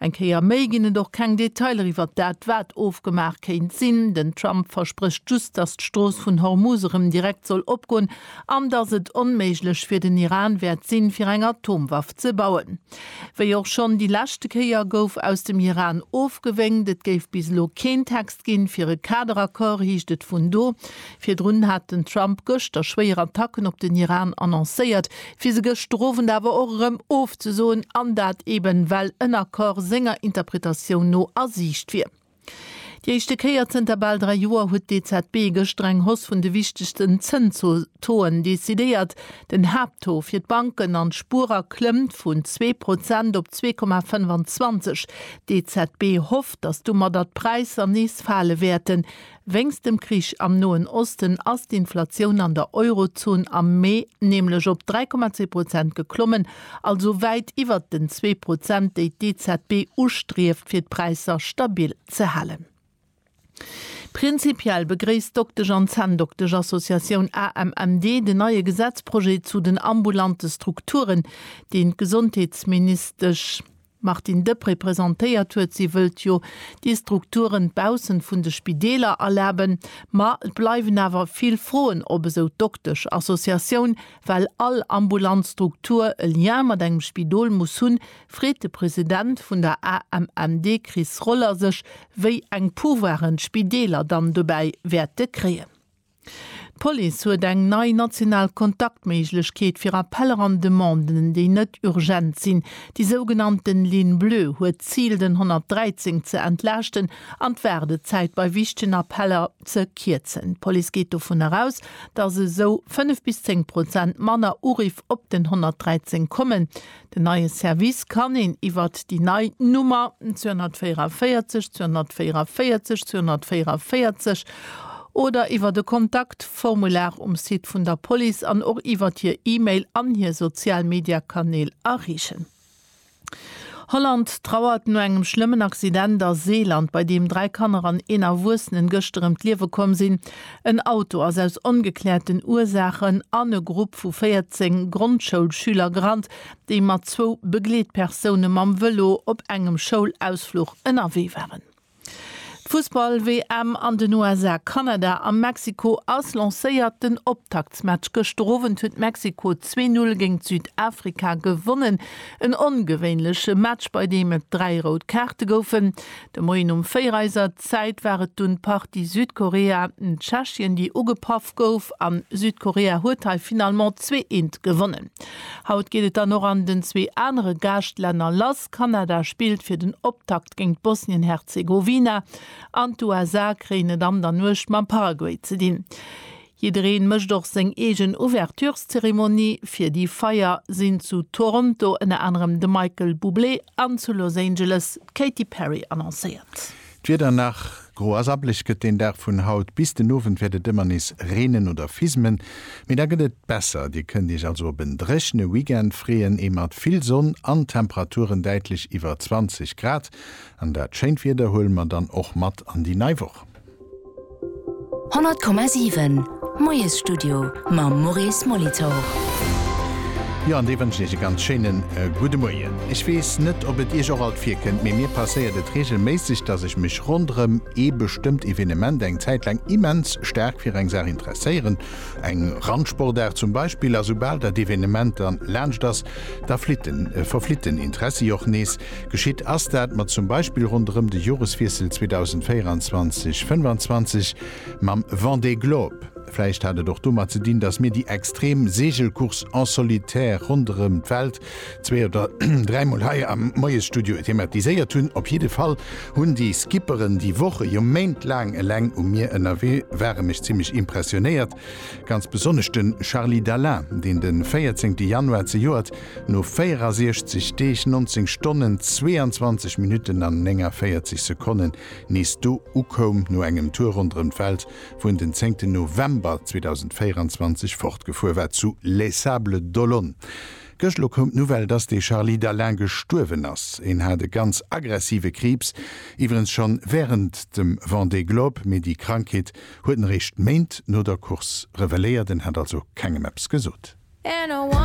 Eng Kéier méi ginn et och keng Detailer iwwert dat, wat ofgemaach kéint sinn. Den Trump versprécht just, datt d'Strooss vun Hormuz erëm direkt soll opgoen an datt et onméiglech fir den Iran wäert sinn, fir eng Atomwaff ze bauen. Wéi och schonn déi leschte Kéier gouf aus dem Iran ofgewénkt. Et géif bis elo keen Text ginn, fir e Kaderaccord, heescht et vun do. Virdrun hat den Trump gëschter schwéier Attacken op den Iran annoncéiert, fir se gëschtowend awer och erëm ofzesoen, an dat eben well en Accord senger Interpretatioun no a Siicht wier. Déi éischte Kéier zënter bal dräi Joer huet d'EZB gëschter eng Hausse vun de wichtegsten Zënstoen decidéiert. Den Haapttaux fir d'Banken an d'Spuerer klëmmt vun zwee Prozent op zwee Komma 25. D'EZB hofft, datt domadder d'Präisser nees fale wäerten, Wéinst dem Krich am Noen Osten ass d'Inflatioun an der Eurozon am Mee nämlech op 3,2 Prozent geklommen, also wäit iwwert den zwee Prozent, déi d'EZB ustrieft, fir d'Präisser stabil ze halen. Prinzipiell begréisst d'Doktesch an Zänndoktesch-Associatioun AMMD den neie Gesetzprojet zu den ambulante Strukturen, deen d'Gesondheetsministesch, Martine Deprez presentéiert huet. Si wëllt jo déi Strukturen baussent vun de Spideeler erlaben. Ma et bleiwen awer vill Froen op, esou d'Doktesch Associatioun, well all ambulant Struktur e Lien mat engem Spidol muss hunn, freet de President vun der AMMD Chris Roller sech, wéi eng Pouvoiren d'Spideeler dann dobäi wäerte kréien. D'Police huet eng nei national Kontaktméiglechkeet fir Appeller an Demanden, déi net urgent sinn. Déi sougenannten Ligne Bleue huet d'Zil, den 113 ze entlaaschten an d'Waardezäit bei wichtegen Appeller ze kierzen. D'Police geet dovun eraus, datt esou 5 bis 10 Prozent manner Uriff op den 113 kommen. Den neie Service kann een iwwert déi nei Nummer 244 244 244 oder iwwert e Kontaktformular um Site vun der Police an och iwwert hir E-Mail an hir sozial Media-Kanäl erreechen. Holland trauert no engem schlëmmen Accident a Seeland, bei deem dräi Kanner an een Erwuessenen gëschter ëm d'Liewe komm sinn. En Auto ass aus ongekläerten Ursaachen an e Grupp vu 14 Grondschoulschüler gerannt, déi mat zwou Begleetpersoune mam Vëlo op engem Schoulausfluch ënnerwee waren. D'Fussball-WM an den USA, Kanada a Mexiko ass lancéiert. Den Optaktsmatch gëschter Owend huet Mexiko 2, 0 géint Südafrika gewonnen. En ongewéinleche Match, bei deem et dräi rout Kaarte goufen. De Moien um 4 Eiser. Zäit war et dunn d'Partie Südkorea, Tschechien, déi ugepaff gouf an Südkorea huet hei finalement zwee eent gewonnen. Haut geet et dann och an den zwee anere Gaascht-Länner lass, Kanada spillt fir den Optakt géint Bosnien-Herzegowina an d'USA kréien et an der Nuecht mam Paraguay ze dinn. Jiddereen mécht och seng eegen Ouvertureszeremonie fir déi Feier, sinn zu Toronto ënner anerem de Michael Bublé an zu Los Angeles d'Katy Perry annoncéiert. D'Wieder nach gro a sabblech gëtt den Dag vun haut. Bis den Owend wäert et ëmmer nees reenen oder fismen, mee da gëtt et besser. Dir kënnt Iech also op en dréchene Weekend freeën, ee mat vill Sonn an Temperaturen däitlech iwwer 20 Grad. An dat schéint Wieder huele mer dann och mat an déi nei Woch. 100,7 Moiesstudio mam Maurice Molitor. Jo, an déi wënschen Iech e ganz schéine gudde Moien. Ech weess net, ob et Iech och alt virkënnt, mee mir passéiert et reegelméisseg, dass ech mech ronderëm ee bestëmmt Evenement eng Zäit laang immens staark fir eng Saach interesséieren, eng Randsportaart zum Beispill. A soubal dat Evenement dann laanscht ass, da flitten, verflitt den Interessi och nees. Geschitt ass dat mat zum Beispill ronderëm de Joreswiessel 2024, 25 mam Vendée Globe. Vläicht hat et och domat ze dinn, datt mir déi extrem Seegelcourse en solitaire ronderëm d'Welt zwee oder dräi Mol hei am Moiesstudio thematiséiert hunn. Op jidde Fall hunn déi Skipperen, déi Woche, jo Méint laang eleng um Mier ënnerwee ware, mech zimmlech impressionéiert. Ganz besonnesch de Charly Dalin, deen de 14 Januar zejoert No 64 Deeg, 19 Stonnen, 22 Minutten an 49 Sekonnen nees do ukoum, no engem Tour ronderëm d'Welt, wou en den zéngten November 2024 fortgefuer war zu Les Sables d'Olonne. Gëscht elo koum d'Nouvelle, dass de Charly Dalin gestuerwen ass. En hat e ganz aggressive Kriibs, iwwerens schonn wärend dem Vendée Globe, mee déi Krankheet huet en eréischt Méint no der Course reveléiert. En hat also kengem eppes gesot.